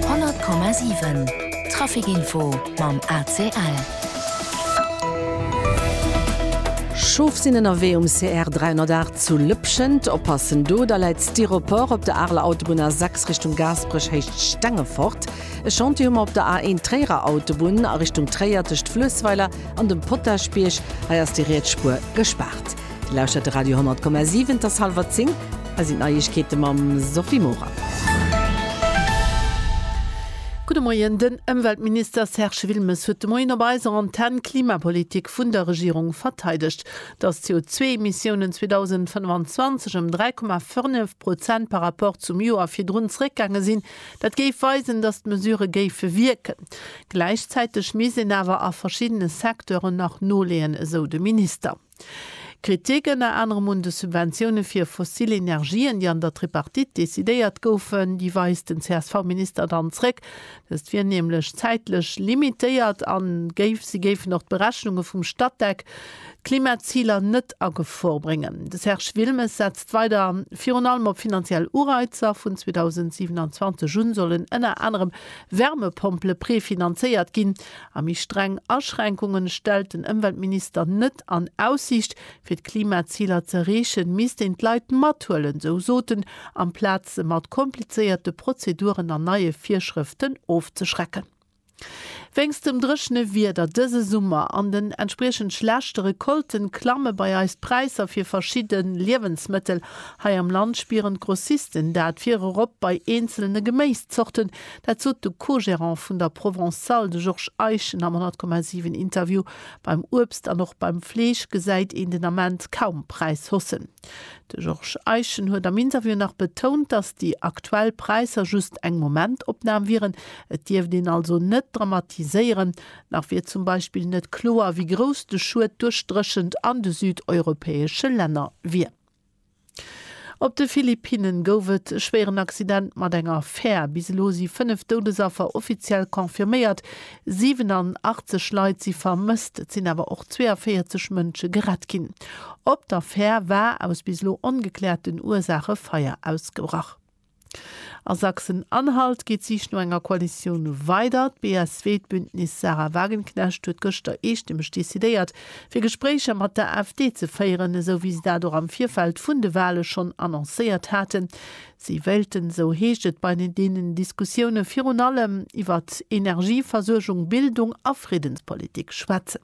100,7 Trafic Info mam ACL. Schof sinn ënnerwee um CR 308 zu Lëpschent. Oppassen, do da läit Styropor op der Areler Autobunn A 6 Richtung Gaasperech héicht Stengefort. E Chantier hu mer op der A1 Tréierer Autobunn a Richtung Tréier tëscht Fluessweiler an dem Potaschbierg. Hei ass déi riets Spuer gespaart. Dir lauschtert de Radio 10,7, et ass hallwer 10, hei sinn d'Neiegkeete mam Sophie Morang. Gudde Moien, Den Ëmweltminister Serge Wilmes huet de Moien op eiser Antenn d'Klimapolitik vun der Regierung verteidegt. Datt d'CO2-Emissiounen 2025 ëm 3,5 Prozent par rapport zum Joer virdrun zeréckgaange sinn, dat géif weisen, datt d'Mesurë géife wierken. Gläichzäiteg misst een awer a verschiddene Secteuren nach noleeën, esou de Minister. Kritik ënner anerem un de Subventioune fir fossil Energien, déi an der Tripartite decidéiert goufen, déi weist den CSV-Minister dann zréck. Dëst wier nämlech zäitlech limitéiert a géif si géifen och d'Berechnunge vum Statec, d'Klimaziler net a Gefor bréngen. De Serge Wilmes setzt weider virun allem op finanziell Ureizer. Vun 2027 un sollen ënner anerem Wärmepompele prefinanzéiert ginn. A méi streng Aschränkunge stellt den Ëmweltminister net an Aussiicht. Fir d'Klimaziler ze erreechen, misst een d'Leit mathuelen, sou sot en, amplaz se mat komplizéierte Prozeduren an neie Virschrëften ofzeschrecken. Wéinst dem dréchene Wieder dëse Summer an den entspriechend schlechte Recolten klamme bei eis d'Präisser fir verschidde Liewensmëttel. Hei am Land spieren d'Grossisten dat virop bei eenzelne Geméiszorten, Dat sot de Co-Gerant vun der Provençale, de Georges Eischen, am 100,7 Interview. Beim Uebst an och beim Fleesch gesäit een den Ament kaum Präishaussen. De Georges Eischen huet am Interview nach betount, datt déi aktuell Präisser just eng Momentopnam wieren. Et dierft een also net dramatiséieren. Nach wier zum Beispill net kloer, wéi grouss de Schued duerch d'Dréchent an de südeuropäesche Länner wier. Op de Philippinnen gouf et e schwéieren Accident mat enger Fär. Bis elo si 5 Doudesaffer offiziell confirméiert. 87 Leit si vermësst, et sinn awer och 42 Mënsche gerett ginn. Op der Fär war aus bis elo ongekläerten Ursaache Feier ausgebrach. A Sachsen-Anhalt geet d'Sich no enger Koalitioun weider. D'BSW-Bündnis Sahra Wagenknecht huet gëschter eestëmmeg decidéiert, fir Gespréicher mat der AfD ze féieren, esou wéi se dat och am Virfeld vun de Wale schonn annoncéiert haten. Si wéilten, esou heescht et, bei deenen Diskussioune virun allem iwwert Energieversuergung, Bildung a Friddenspolitik schwätzen.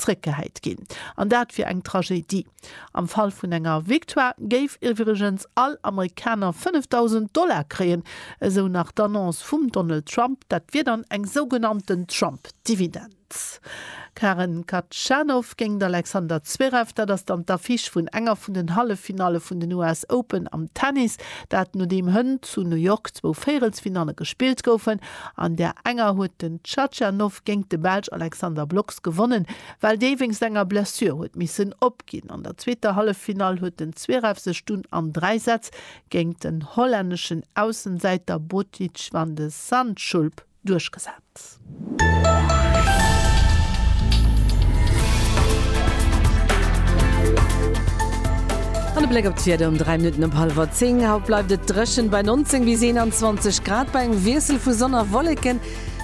zréckgehäit ginn. An dat wier eng Tragedie. Am Fall vun enger Victoire géif iwwregens all Amerikaner 5.000 Dollar kréien, esou nach d'Annonce vum Donald Trump. Dat wier dann eng sougenannten Trump-Dividend. Karen Khachanov géint d'Alexander Zverev, dat ass dann d'Affiche vun enger vun den Halleffinalle vun den US Open am Tennis. Dat nodeem hënt zu New York zwou Véierelsfinalle gespillt goufen. An där enger huet den Tschatschanow géingt de Belsch Alexander Blocks gewonnen, well dee wéinst enger Blessure huet missen opginn. An der zweeter Halleffinall huet den Zverev sech dunn an dräi Sätz géingt den hollänneschen Aussensäiter Botic van de Zandschulp duerchgesat. An e Bléck op d'Wieder um 3 Minutten op hallwer 10. Haut bleift et dréchen bei 19 bis 21 Grad bei engem Wiessel vu Sonn a Wolleken.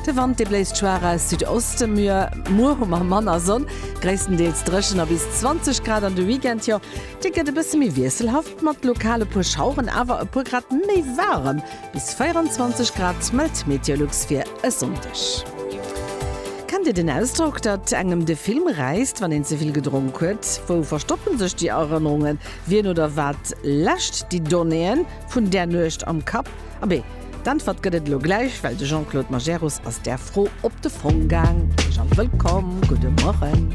De Wand dee bléist schwaach aus Südoste. Muer hu mer manner Sonn, gréisstendeels dréchen a bis 20 Grad. An de Weekend, jo dee gëtt e bësse méi wiesselhaft mat lokal e puer Schaueren, awer e puer Grad méi waarem Bis 24 Grad mellt d'Meteolux fir e Sonndeg. Kennt Dir den Ausdrock, datt engem de Film räisst, wann een ze vill gedronk huet? Wou verstoppe sech déi Erënnerungen? Wien oder wat läscht déi Donnéeën vun där Nuecht am Kapp? Abee, d'Äntwert gëtt et elo gläich, well de Jean-Claude Majerus ass där Fro op de Fong gaang. Heesch a wëllkomm, gudde Morgen!